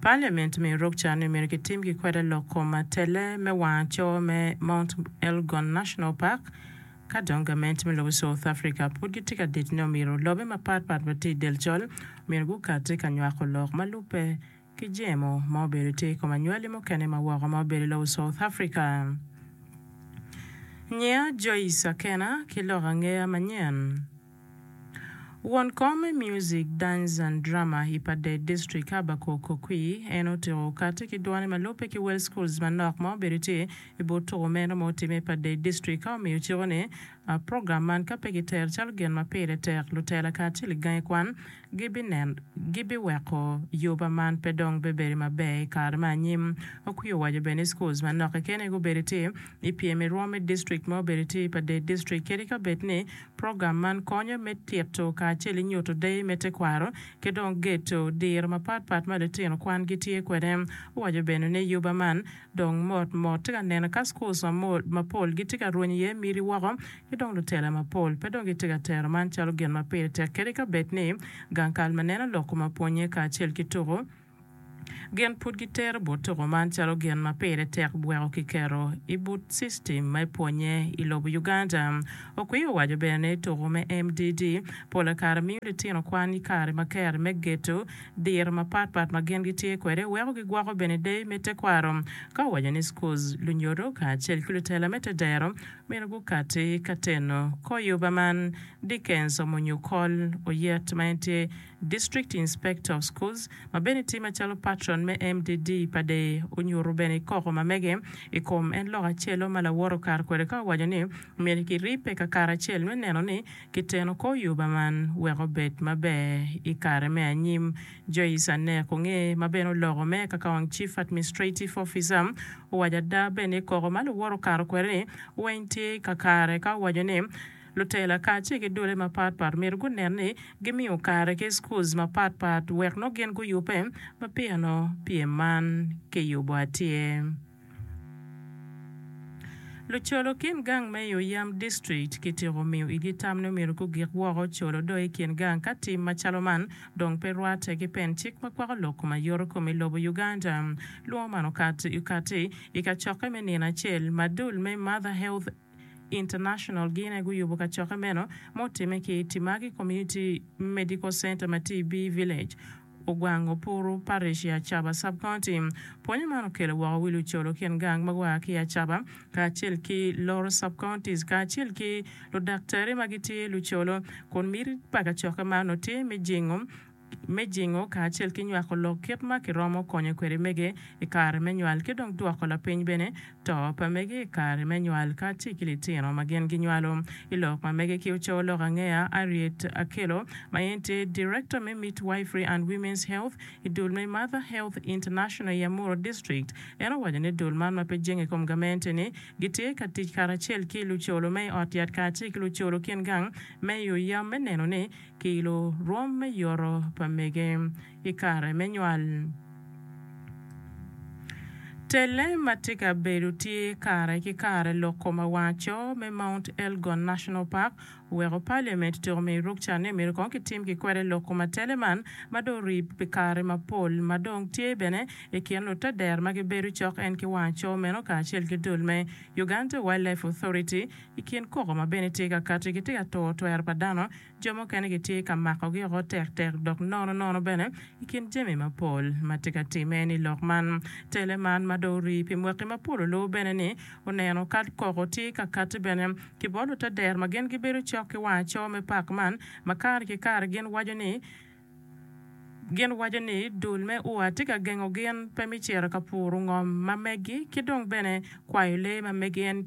Parliament me Yorkshire ni myero kitim ki kwede lok kom atelle me wanga coo me Mount Elgon National Park ka dong gament me lobo South Africa pud gitye ka dit ni omyero lobe mapat pat ma tye i del col myero gukati ka nywako lok ma lubbe ki jemo ma obedo tye i kom anywali mukene ma woko ma obedo i lobo South Africa. Nyiya Joyce Akena ki lok angeya manyen. Won kom me Music, Dance and Drama i Padey District, Habakkuk Okwi, en otyeko kati ki dwone ma lubbe ki Well Schools manok ma obedo tye i but tuko meno ma otimme i Padey District ka omiyo ciko ni program man ka pe gitero calo gin ma pire tek, lutela kacel i gangi kwan gibiweko yoba man pe dong bebedo maber i kare me anyim. Okwi owaco bene ni schools manok keken aye gubedo tye i pyem i rwom me district ma obedo tye i Padey District kadi ka bed ni Program man konyo me tito kacel ki nyuto deyo me tekwaro ki dong gedo diro mapat pat ma litino kwan gitye kwede. Owaco bene ni yuba man dong mot mot tye ka nene ka schools mapol gitye ka rwenyo iye miti woko ki dong lutela mapol pe dong gitye ka tero man calo gin ma pire tek kadi ka bed ni gang kal ma neno lok kome pwonye kacel ki tuko Gin pud gitero bot tuko man calo gin ma pire tek gweko ki keto i but system me pwonye i lobo Uganda. Okwi owaco bene ni tuko me MDD pole kare miyo litino kwan i kare ma kero me geto diro mapat pat ma gin gitye kwede weko gigwoko bene deyo me tekwaro ka owaco ni schools lunyodo kacel ki lutela me tedero myero gukati ka teno kor yuba man. Dickens omunyo kol oyet ma en tye District Inspector of Schools, ma bene tye macalo patron me MDD pa deye, onyuto bene koko ma mege i kom en lok acel-lo ma lawote okato kwede ka owaco ni myero kiribbe kakaracel me neno ni kiteno kor yuba man wek obed maber i kare me anyim. Joyce Anek Onge, ma bene oloko me kakaong Chief Administrative Officer, owaco ada bene i koko ma luwote okato kwede ni weng tye kakare ka owaco ni, Lutela kacel ki dole mapat pat myero gunen ni gimiyo kare ki schools mapat pat wek nongo gin guyubbe ma pino pyem man kiyubo atir. Lucolo kin gang me i Oyam District kitiko miyo igi tam ni myero gugik woko colo do i kin gang ka tim macalo man dong pe rwate ki pen cik ma kwako lok kom ayoro kom i lobo Uganda. Lwongo man okati i kacokke me nino acel ma dul me Mother Health International gine guyubo kacokke meno ma otimme ki Timagi Community Medical Center ma tye i Bee Village, Ogwango Puru Parish i Acaba Sub-County. Pwonyo man okelo woko wi lucolo kin gang ma gua ki i Acaba kacel ki Loro Sub-Counties kacel ki ludaktari ma gitye lucolo kun miti pa kacokke man nongo tye me jingo me jingo kacel ki nywako lok kit ma kiromo konyo kwede mege i kare me nywal ki dong dwoko lapiny bene to pa mege i kare me nywal kacel ki litino ma gin ginywalo. I lok ma mege ki ocowo lok angeya, Harriet Akello ma en tye Director me Midwifery and Women's Health i dul me Mother Health International i Amuru District, en owaco ni dul man ma pe jingo i kom gamente-ni gitye ka tic karacel ki lucolo me i ot yat kacel ki lucolo kin gang me i oya me neno ni Kilo rwom me yoto pa mege i kare me nywal. Telle ma tye ka bedo tye kare ki kare lok kom awaco me Mount Elgon National Park oweko Parliament tyeko miyo ruk can ni myero kong kitim ki kwede lok kom atelle man ma dong orib pi kare mapol ma dong tye bene i kin lute dero ma gibedo cok en ki wangaco meno kacel ki dul me Uganda Wildlife Authority I kin koko ma bene tye ka kati, gitye ka turo twero pa dano, jo mukene gitye ka makogi oko tektek, dok nono nono bene i kin jami mapol ma tye ka timme ni lok man. Tele man ma dong orii pi mwaki mapol olubo bene ni oneno kal koko tye ka kati bene ki bot lutader ma gin gibedo cok ki wang aco me pak man ma kare ki kare gin waco ni gin waco ni dul me ua tye ka gengo gin pe me cito ka puro ngom ma megi ki dong bene kwayo lee ma megi en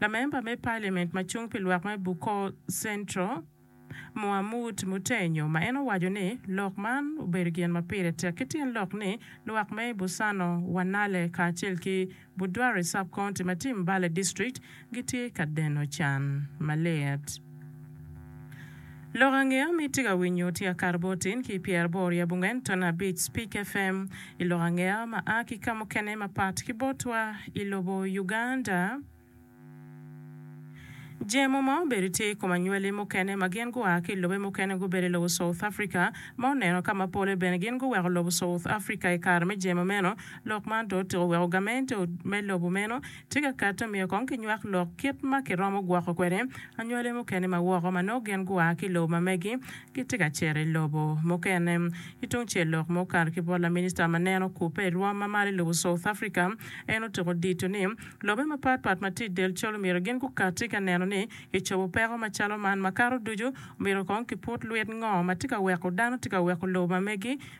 Lamemba me Paliament ma cung pi lwak me Bukor Central, Muhamood Mutenyo ma en owaco ni lok man obedo gin ma pire tek ki tyen lok ni lwak me Busano, Wanale kacel ki Budwari Sub-County ma tye Mbale District gitye ka deno can malit. Lok angeya ma itye ka winyo tye akato bot tin ki pyer aboro yabo ngen ton abic Speak FM i lok angeya ma a ki kamukene mapat ki botwa i lobo Uganda. Jemo ma obedo tye i kom anywali mukene ma gin gua ki i lobe mukene gubedo i lobo South Africa ma oneno ka ma pole bene gin guweko lobo South Africa i kare me jemo meno. Lok man to otyeko weko gamente me lobo meno Tye ka kato myero kong kinywak lok kit ma kiromo gwoko kwede anywale mukene ma woko ma nongo gin gua ki i lobo ma megi gitye ka cito i lobo mukene. Ki tung cel lok ma okato ki bot laminista ma neno kubbe i rwom ma malo i lobo South Africa, en otyeko dito ni lobe mapat pat ma tye i del col myero gin gukati ka neno ni kicobo peko macalo man. Makato ducu, myero kong kiput lwit ngo ma tye ka weko dano tye ka weko lobo ma megi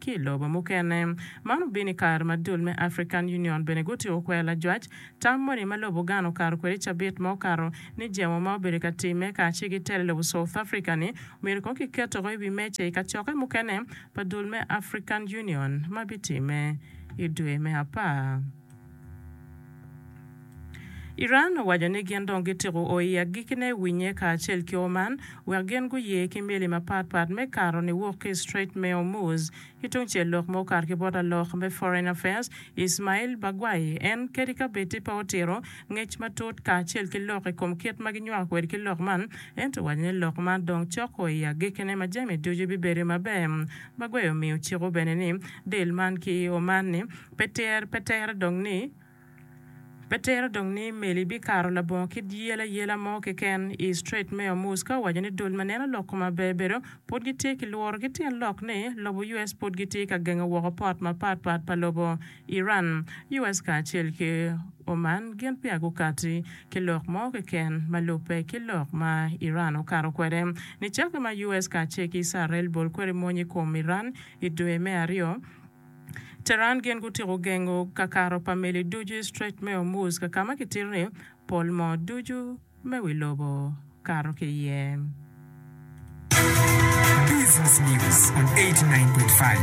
ki i lobo mukene. Man obino i kare ma dul me African Union bene gutyeko kwero lajwac tam moni ma lobo Ghana okato kwede i cabit ma okato ni jemo ma obedo ka timme kara ci gitero i lobo South Africa ni myero kong kiketo woko i wi meja i kacokke mukene pa dul me African Union ma bitimme i dwe me apar. Iran owaco ni gin dong gityeko o i agikine winye kacel ki Oman wek gin guye ki meli mapat pat me kato niwok ki i Strait me Hormuz. Ki tungcel lok ma okato ki bot lalok me Foreign Affairs Ismail Bagwai, en kadi ka bedi pe otito ngec matut kacel ki lok i kom kit ma ginywako kwede ki lok man, ento owaco ni lok man dong cok o i agikine ma jami ducu bibedo maber. Bagwai omiyo ciko bene ni dil man ki i Oman-ni Pe ter, pe tere dong ni, Pe tere dong ni meli bikato labongo kit yel ayela mo keken i Strait me Hormuz ka owaco ni dul ma neno lok kome aber bedo pud gitye ki lworo ki tyen lok ni lobo US pud gitye ka gengo woko pot mapat pat pa lobo Iran. US kacel ki Oman gin peya gukati ki lok mo keken ma lubbe ki lok ma Iran okato kwede. Nicakke ma US kacel ki Icrael bol kwede mony i kom Iran i dwe me aryo, Tehran gin gutyeko gengo kakato pa meli ducu i Strait me Hormuz ka kama kitito ni pol moo ducu me wi lobo kato ki iye. Business News on 89.5.